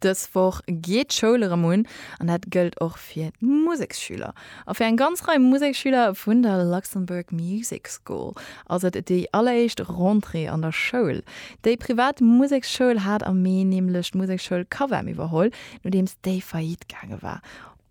Dës Woch geet d'Schoul erëm un an dat gëllt och fir d'Museksschüler. A fir eng ganz Rei Museksschüler vun der Luxembourg Music School ass et déi alleréischt Rentrée an der Schoul. Déi privat Museksschoul hat am Mee nämlech d'Musekschoul Cavem iwwerholl, nodeems déi faillite gaange war.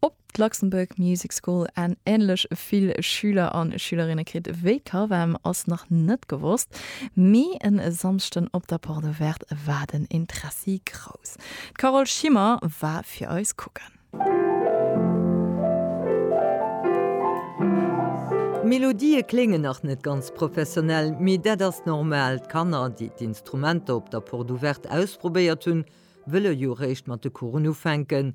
Ob d'Luxembourg Music School en änlech vill Schüler an Schülerinne kritt wéi d'Cavem ass nach net gewosst, mee en Samschden op der Porte Ouverte war den Interessi grouss. D'Carole Schimmer war fir eis kucken. D'Melodië kléngen nach net ganz professionell, mee dat ass normal, d'Kanner, déi d'Instrumenter op der Porte Ouverte ausprobéiert hunn, wëlle jo réischt mat de Coursen ufänken.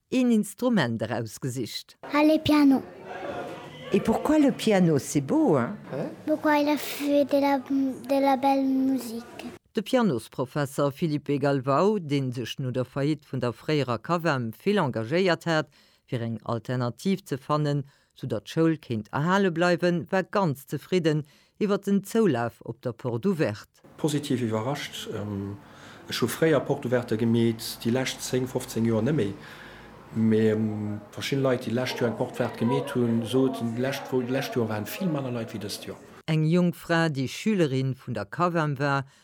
Een Instrument erausgesicht. Allez piano! Et pourquoi le piano c'est beau hein? Pourquoi il a fait de la de la belle musique? De Pianosprofesser Philippe Galvao, dee sech no der Faillite vun der fréierer CAVEM vill engagéiert hat, fir eng Alternativ ze fannen, sou datt d'Schoul kéint erhale bleiwen, war ganz zefridden iwwert den Zoulaf op der Porte Ouverte. Positiv iwwerrascht, ech hu fréier Porte Ouverte gemeet, déi lescht 10, 15 Joer némméi, mee verschidden Leit déi lescht Joer eng Porte Verte gemeet hunn, soten d'lescht Joer waren vill manner Leit wéi dëst Joer. Eng jonk Fra déi Schülerin vun der Cav'em war,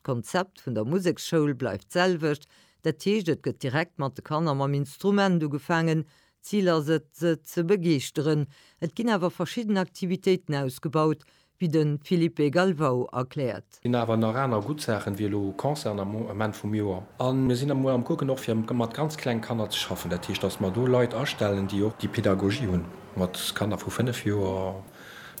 D'Konzept vun der Museksschoul bleift d'selwecht, dat heescht et gëtt direkt mat de Kanner mam Instrument ugefaangen. D'Zil ass et, se ze begeeschteren. Et ginn awer verschidden Aktivitéiten ausgebaut, wéi de Filipe Galvao erkläert. Mir hunn awer nach aner gutt Saachen, wéi elo Concerten am Ament vum Joer. A mir sinn emol am Kucken och fir mat ganz kleng Kanner ze schaffen, dat heescht, datt mer do Leit astellen, déi och déi Pedagogie hunn mat Kanner vu fënnef Joer.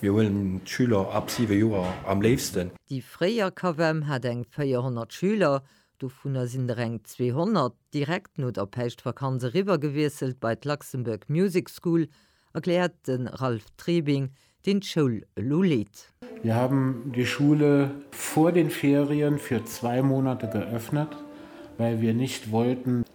Mir huelen d'Schüler ab siwe Joer am léifsten. Déi fréier CAVEM hat eng 400 Schüler, dovunner sinn der eng 200 direkt no der Päischtvakanz eriwwergewiesselt bei d'Luxembourg Music School, erkläert de Ralph Trebing, deen d'Schoul elo leet. Wir haben die Schule vor den Ferien für zwei Monate geöffnet, well wir nicht wollten,